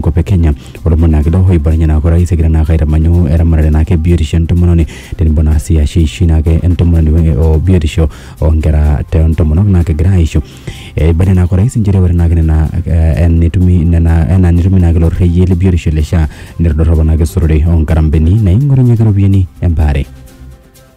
enkop e Kenya olomon naa kido oibalunye naa orais egira naa aitamanyu eramatare naake biotisho entomononi tenebo naa sii ashu eishoi naake entomononi we- o biotisho oonkera te ntomonok naa kegira aisho. Eibalie naake orais inchere ore naake nena eh, enetumi nena enaa netumi naake ilo rrekie le biotisho le SHA netodorropa naake esurore oo nkarambeni naing'orunyieki iropiyiani embaare.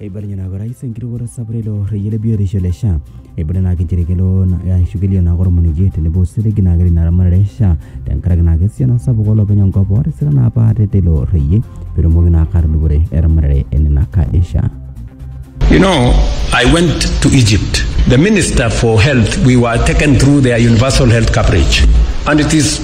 eibalinye naa orais enkirukoto sapuk ilo reyiet le biotisho le SHA eibala naa inchere kelo na- ashu kelio naa ormonekie tenebo osiligi naa kelo ina ramatare e SHA tenkaraki naa esiana sapuk olopeny enkop otisira naa apa ate teilo reyiet petumoki naa ake atudupore eramatare enena kaadi e SHA. You know, I went to Egypt. The Minister for Health, we were taken through their universal health coverage. And it is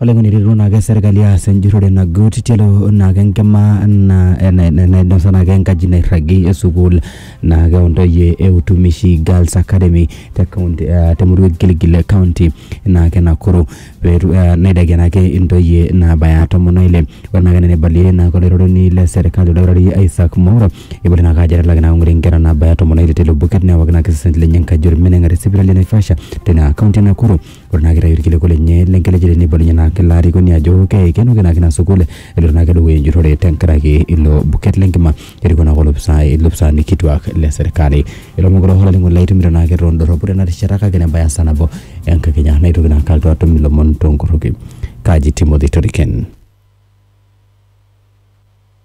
Olainining'oni eretu naake serkali aas enjurrore nagut tialo naake enkima na ena nainosa naake enkaji nairragi e sukuul naake o ntoyie e Utumishi Girls Academy te kaunti ah te murua e Gilgil kaunti naake e Nakuru. Peetu ah neidakie naake intoyie naabaya tomon o ile ore naake ena neibalie naake olairoroni le serkali oldakitari Isaac Mwaura Eipotu ina kaji etalaki ina kong'ori nkera naabaya tomon oile teilo buket newaki ina kisisnet lenye enkaji olmeneng'a te sipitali e Naivasha teina kaunti e Nakuru. Ore naa keitayu ilkiliku lenye le nkelejare neibon ninye ina ilo arikoni ajo keikenoki naa ake ina sukuul eloito naa ake dukuya enjurrore tenkaraki ilo buket le nkima erikoo naa ake olopisai ilopisaani kituak le serkali. Ilomon kulo olainining'oni lai itumito naa ake too ndorropu tena rishata kake nebaya esaa nabo enkakenya naitoki naa ake alotu atum ilomon too nkorroki. Kaji Timothy Toriken.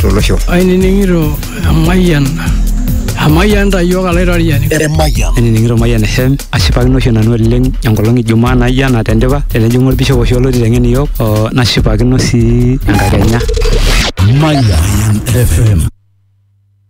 tolosho. Ainining'ito emayian emayian ta iyiook alaitoriani. Emayian. Ainining'ito Mayian FM ashipakino oshi nanu oleng enkolong Ijumaa naijo ena tendipa tenejing'u olbishop oshi olotii teng'en iyiook oo nashipakino sii enkakenya. Mayian FM.